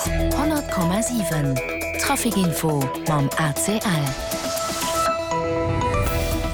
100,7 Trafic Info mam ACL.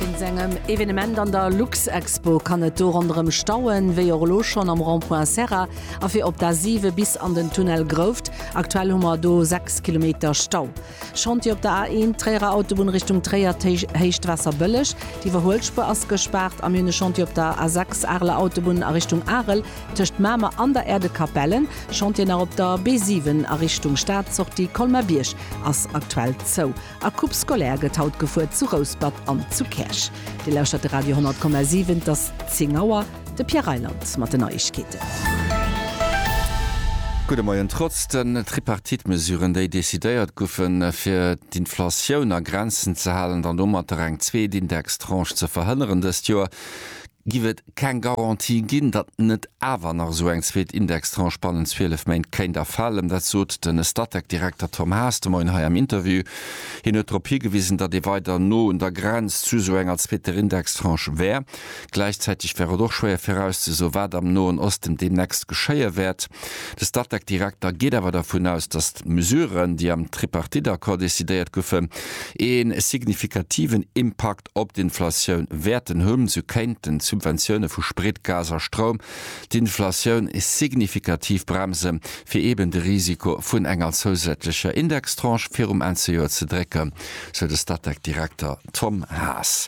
Wéinst engem Evenement an der Luxexpo kann et do ronderëm stauen, wéi och elo schonn am Rond-point Serra a fir op d'A7 bis an den Tunnel Grouft. Aktuell hu mer do 6 Kilometer Stau. Chantier op der A1, Tréierer Autobunn Richtung Tréier, Héichtwaasserbëlleg, d'Iwwerhuelspur ass gespaart, a mir hunn e Chantier op der A6, Areler Autobunn a Richtung Arel, tëscht Mamer an der Aire de Capellen. Chantier nach op der B7 a Richtung Stad, Sortie Colmer-Bierg ass aktuell zou a Coupe scolaire gëtt haut gefuer zu Rouspert an zu Käerch. Dir lauschtert de Radio 100,7, et ass 10 Auer. De Pierre Reyland mat den Neiegkeeten. Gudde Moien. Trotz den Tripartite-Mesuren, déi decidéiert goufen, fir d'Inflatioun a Grenzen ze halen an domatter eng zweet Indextranche ze verhënneren dëst Joer, giff et keng Garantie ginn, datt net awer nach esou eng zweet Indextranche bannent 12 Méint kéint erfalen. Dat sot den Statec-Direkter Tom Haas de Moien hei am Interview. Hien huet drop higewisen, datt ee weider no un der Grenz zu esou enger zweeter Indextranche wär. Gläichzäiteg wär et och schwéier virauszesoen, wat am Noen Osten deemnächst geschéie wäert. De Statec-Direkter geet awer dervun aus, datt d'Mesuren, déi am Tripartite-Accord decidéiert goufen, ee signifikativen Impakt op d'Inflatioun wäerten hunn. Sou kéinten d'Subventioune vu Sprit, Gas a Stroum d'Inflatioun signifikativ bremsen, fir eeben de Risiko vun enger zousätzlecher Indextranche virum Enn-ze-Joer ze drécken, sou de Statec-Direkter. Tom Haas.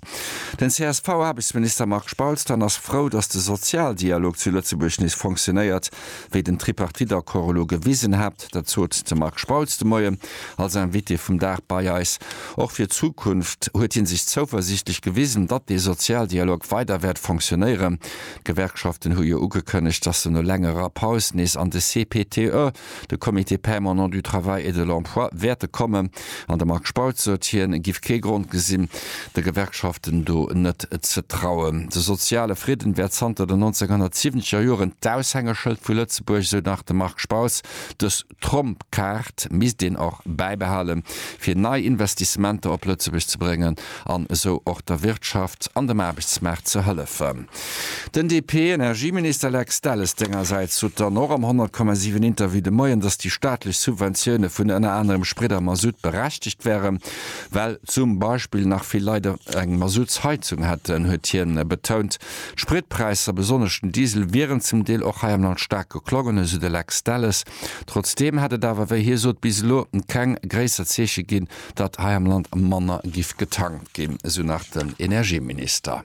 Den CSV-Aarbechtsminister Marc Spautz dann ass frou, datt de Sozialdialog zu Lëtzebuerg nees fonctionéiert, wéi den Tripartite-Accord elo gewisen hat. Dat sot de Marc Spautz de Moien als Invité vum Dag bei eis. Och fir d'Zukunft huet hie sech zouversiichtlech gewisen, datt dee Sozialdialog weider wäert fonctionéieren. D'Gewerkschaften hu jo ugekënnegt, datt se no längerer Paus nees an de CPTE De Comité permanent du travail et de l'emploi wäert de kommen, an de Marc Spautz sot, hien giff kee Grond gesinn, de Gewerkschaften do net ze trauen. De soziale Fridden wär zanter den 1970 er Joren d'Aushängeschëld vu Lëtzebuerg, esou nach de Marc Spautz. Dës Tromp-Kaart misst een och bäibehalen, fir nei Investissementer op Lëtzebuerg ze bréngen an esou och der Wirtschaft an dem Aarbechtsmaart ze hëllefen. Den DP-Energieminister Lex Delles sengersäits sot dann och am 100 Komma 7 Interview de Moien, datt déi staatlech Subventioune vun ënner anerem Sprit a Masutt berechtegt wären, well zum Beispill nach vill Leit eng Masuttsheizung hätten, huet hien betount. D'Spritpräisser, besonnesch den Diesel, wieren zum Deel och hei am Land staark geklommen, esou de Lex Delles. Trotzdeem hätt et awer, wéi hie sot, bis elo keng gréisser Zeeche ginn, datt hei am Land manner giff getankt ginn, esou nach den Energieminister.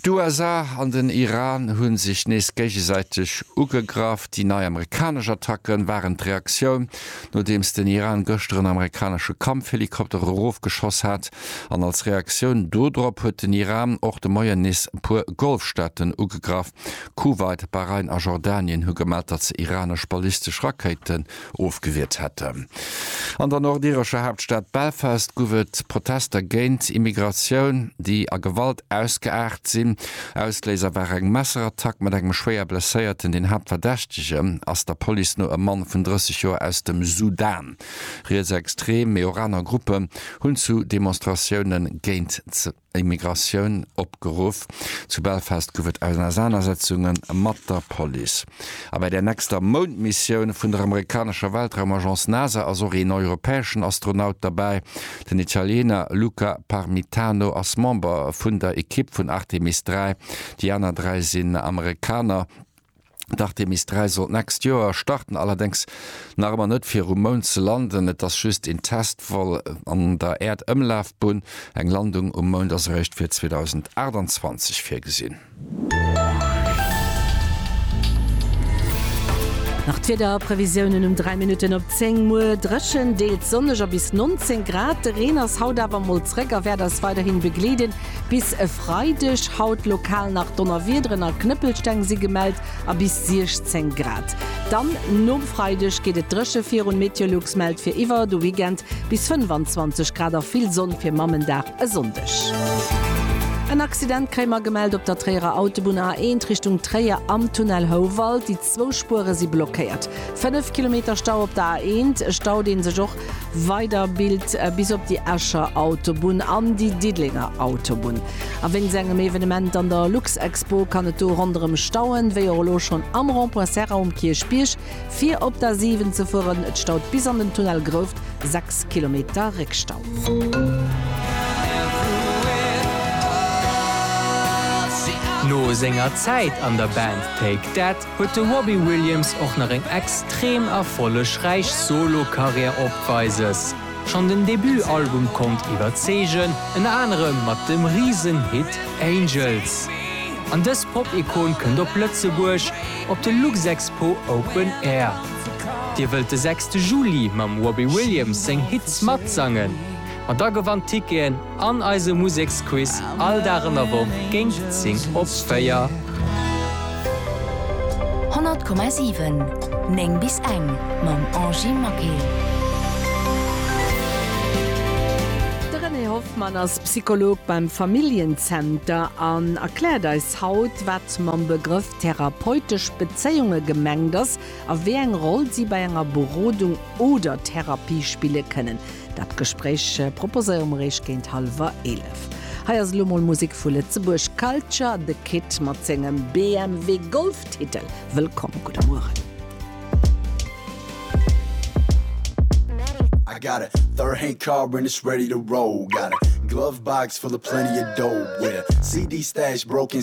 D'USA an den Iran hu sech nees géigesäiteg ugegraff. Déi nei amerikanesch Attacke waren d'Reaktioun, nodeems den Iran gëschter en amerikanesche Kampfhelikopter erofgeschoss hat. An als Reaktioun dodrop huet den Iran och de Moien nees e puer Golfstaaten ugegraff. Kuwait, Bahrain a Jordanien hu gemellt, datt se iranesch ballistesch Rakéite ofgewiert hätten. An der nordirescher Haaptstad Belfast guff et Protester géint Immigratioun, déi a Gewalt ausgeaart sinn. Ausléiser war eng Messerattack mat engem schwéier Blesséierten. Den Haaptverdächtege ass der Police no e Mann vun 30 Joer aus dem Sudan. Rietsextrem Meoraner Gruppen hunn zu Demonstratioune géint Immigratioun opgeruff. Zu Belfast gouf et Ausenasanersetzunge mat der Police. A bei der nächster Moundmissioun vun der amerikanescher Weltraumagence NASA ass och een europäeschen Astronaut derbäi. Den Italiener Luca Parmitano ass Member vun der Ekipp vun Artemis 3, déi aner dräi sinn Amerikaner. D'Artemis 3 sollt d'nächst Joer starten, allerdéngs nach ëmmer net fir um Mound ze landen. Et ass just een Test-Vol an der Äerdëmlafbunn. Eng Landung um Mound ass eréischt fir 2028 virgesinn. Nach d'Wiederprevisiounen um 3 Minutten op 10, Muer dréchen, deels sonneg a bis 19 Grad. De Reen ass haut awer mol zréck a wäert eis weiderhin begleeden. Bis e Freideg haut lokal nach Donnerwiederen a Knëppelsteng si gemellt a bis 16 Grad. Dann nom Freideg geet et dréche virun, Meteolux mellt fir iwwer de Weekend bis 25 Grad a vill Sonn fir Mammendag e Sonndeg. En Accident kréie mer gemellt op der Tréierer Autobunn A1 Richtung Tréier am Tunnel Houwald. Zwou Spuere si blockéiert. Fënnef Kilometer Stau op der A1, e Stau dee sech och weider bilt bis op déi Escher Autobunn an déi Diddelenger Autobunn. A wéinst engem Evenement an der Luxexpo kann et do ronderëm stauen, wéi och elo schonn am Rond-point Serra um Kierchbierg. Fir op d'A7 ze fueren, et staut bis an den Tunnel Grouft, 6 Kilometer Réckstau. No senger Zäit an der Band Take That huet de Robbie Williams och nach eng extrem erfollegräich Solo-Karriär opweises. Schonn den Debut-Album konnt iwwerzeegen, ënner anerem mat dem Risen-Hit Angels. An dës Pop-Ikon kënnt op Lëtzebuerg op de Luxexpo Open Air. Dir wëllt de sechste Juli mam Robbie Williams seng Hits matsangen? Ma da gewannt Ticketen an eise Museksquiz all Dag an der Woch géint 10 op 4. 100,7 9 bis eng mam Angy Maquet. De René Hoffmann ass Psycholog beim Familljen-Zenter an erkläert eis haut, wat mam Begrëff therapeutesch Bezéiunge gemengt ass a wéi eng Roll si bei enger Berodung oder Therapie spille kënnen. Dat Gespréich proposéiere mer Iech géint hallwer 11. Hei ass elo mol Musek vu Lëtzebuerg, Culture The Kid mat sengem BMW Golf Titel Wëllkomm. Gudde Mueren. I got a third hand car and it's ready to roll got a glove box full of plenty of dough yeah CD stash broken